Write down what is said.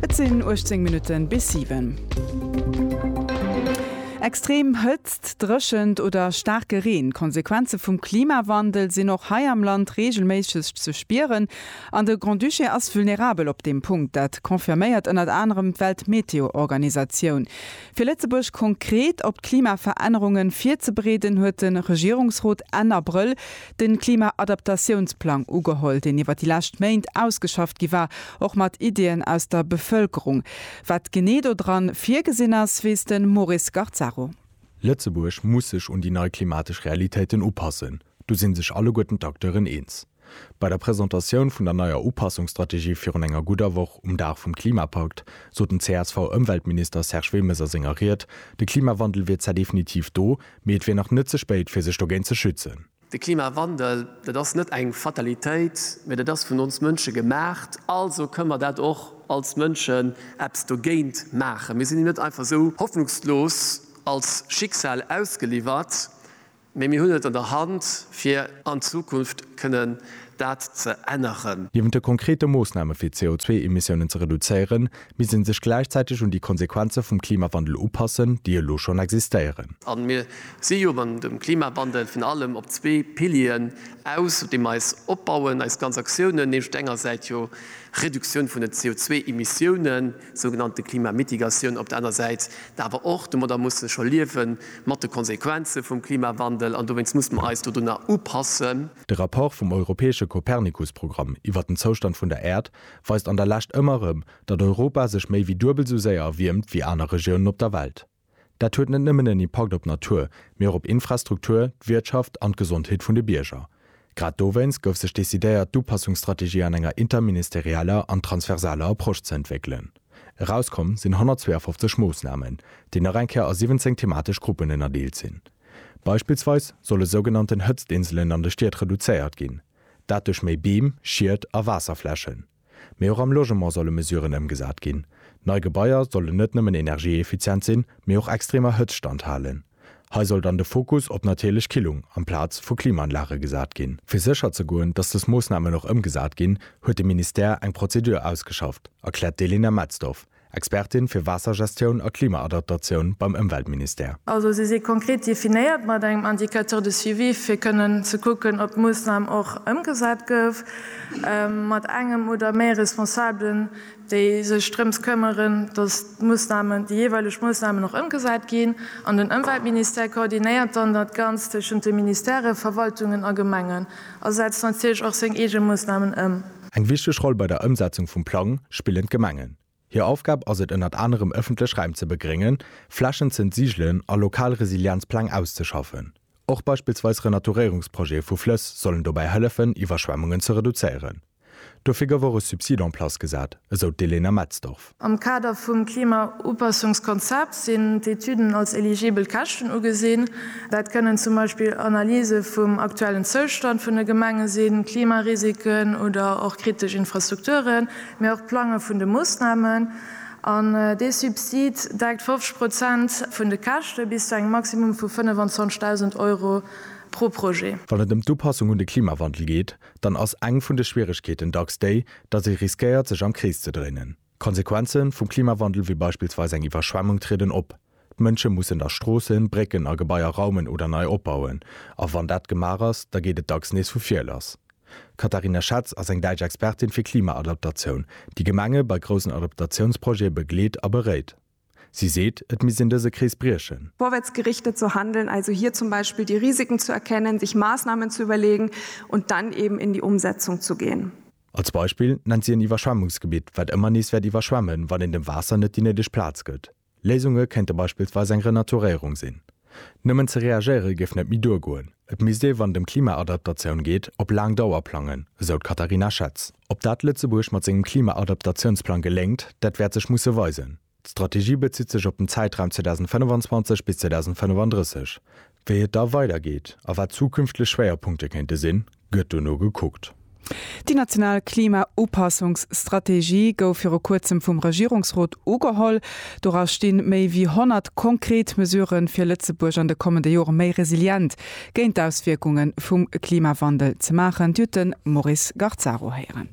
Et sinn 18 Minutten bis 7. Extrem Hëtzt, Dréchent oder staarke Reen, d'Konsequenze vum Klimawandel sinn och hei am Land reegelméisseg ze spieren. An de Grand-Duché ass vulnerabel op deem Punkt. Dat confirméiert ënnert anerem d'Weltmeteoorganisatioun. Fir Lëtzebuerg konkret op d'Klimaverännerunge virzebereeden, huet de Regierungsrot Enn Abrëll de Klima-Adaptatiounsplang ugeholl, deen iwwer déi lescht Méint ausgeschafft gi war, och mat Iddien aus der Bevëlkerung. Wat genee do dran virgesinn ass, weess de Maurice Garzaro. Lëtzebuerg muss sech un déi nei klimatesch Realitéiten upassen, do si sech alleguerten d'Acteuren eens. Bei der Presentatioun vun der neier Upassungsstrategie virun enger gudder Woch um Dag vum Klimapakt sot den CSV-Ëmweltminister Serge Wilmes a senger Ried, de Klimawandel wier zwar definitiv do, Mee et wier nach net ze spéit, fir sech dogéint ze schützen. De Klimawandel, dat ass net eng Fatalitéit, mee dat ass vun ons Mënsche gemaacht. Also kënne mer dat och als Mënschen eppes dogéint maachen. Mir sinn him net einfach esou hoffnungslos als Schicksal ausgeliwwert, mee mir hunn et an der Hand, fir an Zukunft kënnen dat ze änneren. Niewent de konkrete Moossname fir d'CO2-Emissiounen ze reduzéieren, misst ee sech gläichzäiteg un déi Konsequenze vum Klimawandel upassen, déi elo schonn existéieren. A mir si jo beim dem Klimawandel virun allem op zwee Pilieren aus, op deem mer eis opbauen, eis ganz Aktiounen, nämlech op der enger Säit jo Reduktioun vun den CO2-Emissiounen, sougenannte Klimamitigatioun, op der aner Säit da awer och, domadder muss ee scho liewen, mat de Konsequenze vum Klimawandel. An dowéinst muss mer eis dodunner upassen. De Rapport vum europäesche Copernicus-Programm iwwert den Zoustand vun der Äerd weist an der Lescht ëmmer erëm, datt Europa sech méi wéi duebel esou séier erwiermt wéi aner Regiounen op der Welt. Dat huet net nëmmen en Impakt op d'Natur, mee och op Infrastruktur, d'Wirtschaft an d'Gesondheet vun de Bierger. Grad dowéinst gouf sech decidéiert, d'Upassungsstrategie an enger interministerieller an transversaler Approche ze entwéckelen. Erauskomm sinn 152 Moossnamen, déi nach eng Kéier a 17 thematesch Gruppen ënnerdeelt sinn. Beispillsweis solle sougenannten Hëtztinselen an de Stied reduzéiert ginn. Dat duerch méi Beem, Schied a Waasserflächen. Mee och am Logement solle Mesuren ëmgesat ginn. Nei Gebaier sollen net nëmmen energieeffizient sinn, mee och extremer Hëtzt standhalen. Hei soll dann de Fokus op natierlech Killung amplaz vu Klimaanlage gesat ginn. Fir sécher ze goen, datt dës Moossnamen och ëmgesat ginn, huet de Ministère eng Prozedur ausgeschafft, erkläert d'Elena Metzdorf. Expertin fir Waassergestioun a Klimaadaptatioun beim Ëmweltministère. Also si si konkret definéiert mat engem Indicateur de suivi fir kënnen ze kucken, ob d'Moossnam och ëmgesat gouf, mat engem oder méi Responsabelen, déi sech drëms këmmeren, datt d'Moossnamen, déi jeeweileg Moossnamen och ëmgesat ginn. An den Ëmweltministère koordinéiert dann dat Ganzt tëschent de Ministèren, Verwaltungen a Gemengen a setzt natierlech och seng eege Moossnamen ëm. Eng wichteg Roll bei der Ëmsetzung vum Plang spillen d'Gemengen. Hir Aufgab ass et ënnert anerem ëffentlech Räim ze begréngen, Flächen z'entsigelen a lokal Resilienzpläng auszeschaffen. Och beispillsweis Renaturéierungsprojete vu Flëss sollen dobäi hëllefen Iwwerschwemmungen ze reduzéieren. Dofir gouf och e Subsid en place gesat, esou d'Elena Metzdorf. Am Kader vum Klimaupassungskonzept sinn d'Etüden als eligibel Käschten ugesinn. Dat kënnen zum Beispill Analyse vum aktuellen Zoustand vun de Gemenge sinn, Klimarisiken oder och kritesch Infrastrukturen, mee och d'Plange vun de Moossnamen. An dee Subsid deckt 50 Prozent vun de Käschte bis zu engem Maximum vu 25.000 Euro pro Projet. Wann et ëm d'Upassung un de Klimawandel geet, dann ass eng vun de Schwieregkeeten dacks déi, datt ee riskéiert, sech am Krees ze dréinen. D'Konsequenze vum Klimawandel, wéi beispillsweis eng Iwwerschwemmung, trieden op. D'Mënsche mussen da Stroossen, Brécken a Gebaier raumen oder nei opbauen. A wann dat gemaach ass, da geet et dacks nees vu vir lass. D'Katharina Schatz ass eng däitsch Expertin fir Klimaadaptatioun, déi Gemenge bei groussen Adaptatiounsprojete begleet a beréit. Si seet, et misst een dëse Krees briechen. Vorwärtsgerichtet zu handeln, also hier zum Beispiel die Risiken zu erkennen, sich Maßnahmen zu überlegen und dann eben in die Umsetzung zu gehen. Als Beispill nennt si en Iwwerschwemmungsgebitt, wat ëmmer nees wäert iwwerschwemmen, wann een dem Waasser net déi néideg Plaz gëtt. Léisunge kéinte beispillsweis eng Renaturéierung sinn. Nëmmen ze reagéiere géif net méi duergoen. Et misst ee wann et ëm Klimaadaptatioun geet, op laang Dauer plangen, esou d'Katharina Schetz. Ob dat Lëtzebuerg mat sengem Klimaadaptatiounsplang geléngt, dat wäert sech musse weisen. D'Strategie bezitt sech op den Zäitraum 2025 bis 2035. Wéi et da weidergeet a wat zukünftlech Schwéierpunkte kéinte sinn, gëtt dono gekuckt. Déi national Klima-Upassungsstrategie gouf viru kuerzem vum Regierungsrot ugeholl. Dora sti méi wéi 100 konkret Mesurë fir Lëtzebuerg an de kommende Jore méi resilient géint d'Auswierkunge vum Klimawandel ze maachen. D'Jute Moris-Garzaro héieren.